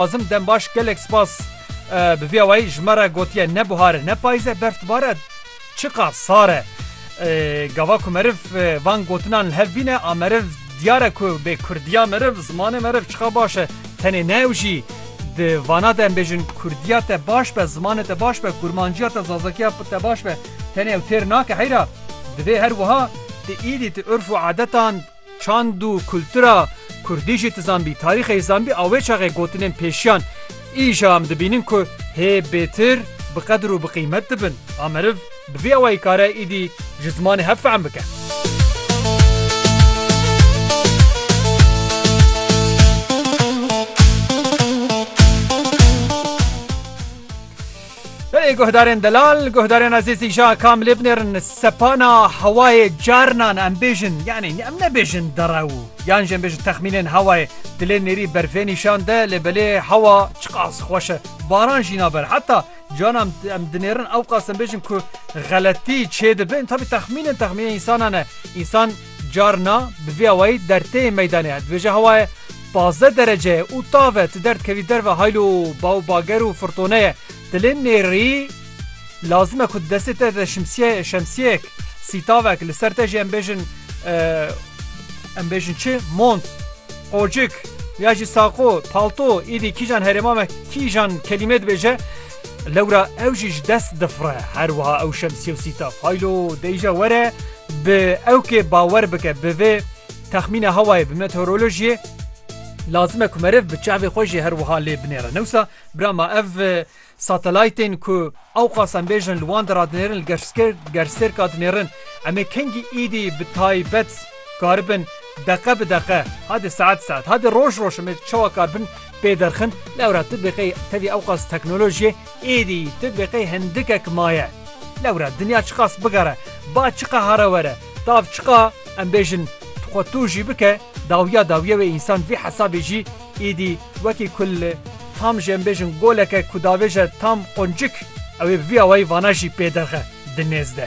Kazim Dembaş gelek spas bi vî awayî ji me re gotiye ne bihar e ne payîz e berf dibar e çiqa sar e. Gava ku meriv van gotinan li hev bîne a meriv diyar e ku bê kurdiya meriv zimanê meriv çiqa baş e tenê ne ew jî di vana de em bêjin kurdiya te baş be zimanê te baş be kurmanciya te zazekiya te baş be tenê ew têr nake heyra divê her wiha tu îdî tu urf û adetan Çand û kultura kurdî jî tu zanbî, tarîxê jî zanbî a wê çaxê gotinên pêşiyan îja em dibînin ku hê bêtir bi qedir û bi qîmet dibin. A meriv bi vî awayî kare îdî ji zimanê hev fehm bike. Belê guhdarên delal, guhdarên ezîzî ja kamilê binêrin sepana hewayê carinan em bêjin yanî em nebêjin derew yan jî em bêjin texmînên hewayê dilê nêrî berfê nîşan de lê belê hewa çiqas xweş e baran jî naber heta cana em dinêrin ewqas em bêjin ku xeletî çêdibin tabî texmînin texmînê însanan e însan Carna bi vî awayî derteyê meydanê her dibêje hewa ye pazdeh derece ye û tav e ti derdikevî derve haylo ba û bager û firtone ye ti lê nêrî lazim e ku di destê te de şimsye şemsiyeyek sîtavek li ser te jî em bêjin em bêjin çi mont qocik ya jî saqo palto îdî kîjan herêma me kîjan kelîmê dibêje lewra ew jî ji dest difire her wiha ew şemsiye û sîtav haylo deyîje were Bi ew ke bawer bike bi vê texmîna hewayê bi meteorolojiyê lazim e ku meriv bi çavê xwe jî her wiha lê binêre. Newsa bira ma ev satelaytên ku ewqas em bêjin li wan de radinêrin li gersêrka dinêrin em ê kengî êdî bi taybet karibin deqe bi deqe hadê saet saet hadê roj roj em ê çawa karibin pê derxin lewra tu bêqey tevî ewqas teknolojiyê Êdî tu biqê hindikek maye. Lewre dinya çiqas bigere, ba çiqehare were, tav çiqa em bêjin tu xwe tu jî bike dawiya dawiye wê însan vî hesabê jî êdî wekî ku li tam jî em bêjin goleke ku davêje tam qoncik ewê bi vî awayî vana jî pê derxe di nêz de.